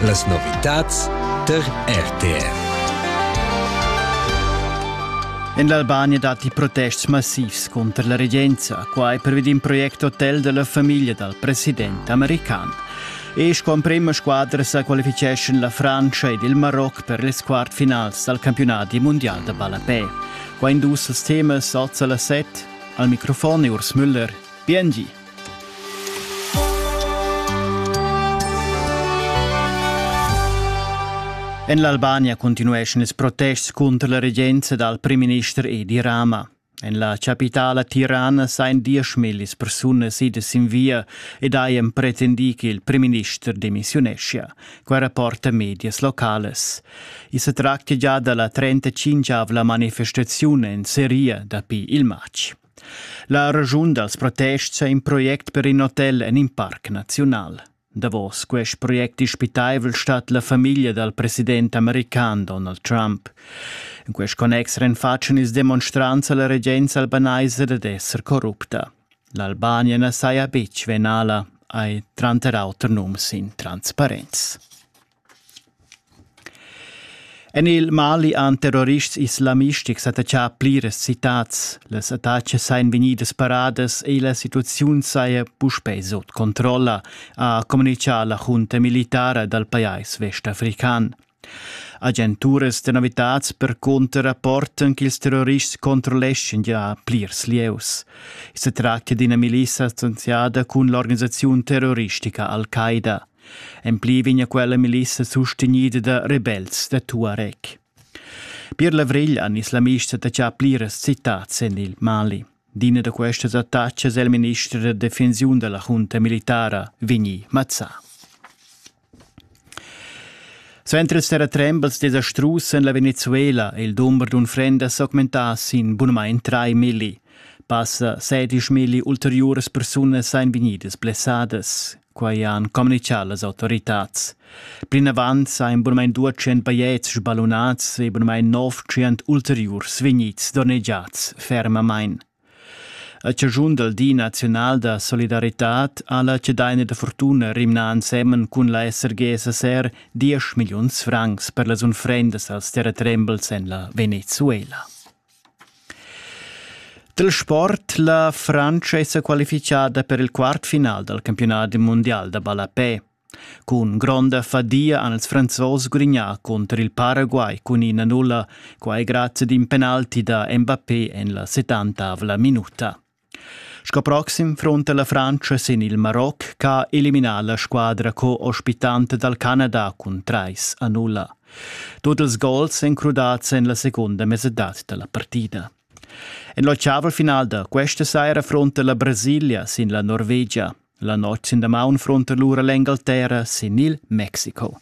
Las novitads tar RTR. En l'Albania datti protests massivs cunter la regenza, quai pervi d'in project hotel della famiglia dal president american. E sco emprima squadra sa qualificeschan la Francia ed il Maroc per les quartfinals dal campionati mondial da ballapè. Qua in dus als temas alza la set. Al microfon è Urs Müller. Biengi! En l'Albania continueschan ils protests cunter la regenza dal primminister Edi Rama. En la chapitala Tirana sain dieschmillis persunas idas sin via ed hajan pretendì ch'il primminister demissiuneschia. Quai rapporta medias locales. I sa tractia già da la 35-avla manifestaziun en Seria dapi il matg. La raschun dals protests è in project per in hotel en in parc naziunal. Davos quest project dispitaivel stat la famiglia dal president american Donald Trump. In quest connex renfatschan ils demonstrants a la regenza albanaisa dad esser corrupta. L'Albania na saja betg venala, hai tranter auter nums in transparenz. En il Mali han terrorists islamistics attaccà pliras citads. Las attacas sajan vegnidas paradas e la situaziun saja puspè sut controlla, ha communitgà la junta militara dal pajais vestafrican. Agenturas da novitads percunter rapportan ch'ils terrorists controlleschan già plirs lieus. I sa tractia d'ina milissa associada cun l'organisaziun terroristica Al-Qaida. En pli vegna quella milissa sustegnida da rebels da Tuareg. Pier Lavrigl han islamista da già pliras citats en il Mali. D'ina da questas attacas è il minister da defensiun della junta militara Vigni Mazza. Centres terra trembles desastrus en la Venezuela e il dumber d'unfrenda s'augmentà sin bunamain 3 milli. Passa 16 milli ulteriuras persunas ein vegnidas blessadas. Quai han communitgà las autoritads. Plinavant sajan bunamain 200 bajetgs sballunads e bunamain 900 ulteriurs vegnids donnegiads fermamain. A chaschun dal Di naziunal da solidaritad ha la cedaina da fortuna rimnà ensemen cun la SRG-SSR 10 milliuns francs per las unfrendas als terratrembels en la Venezuela. Dal sport la Frantscha è sa qualifichada per il quartfinal dal campiunat mundial da ballapè. Cun gronda fadia han els franzos gudignà cunter il Paraguay cun ina nulla, quai grazie ad in penalti da Mbappé en la 70 minuta. Sco proxim frunta la Frantscha sin il Maroc ch'ha eliminà la squadra co-ospitanta dal Canada cun trais a nulla. Tut ils gols èn crudads en la segunda mesadad da la partida. En l'oceaval-final da questa saira frunta la Brasilia sin la Norvegia. La notg sin damaun frunta lura l'Engalterra sin il Mexico.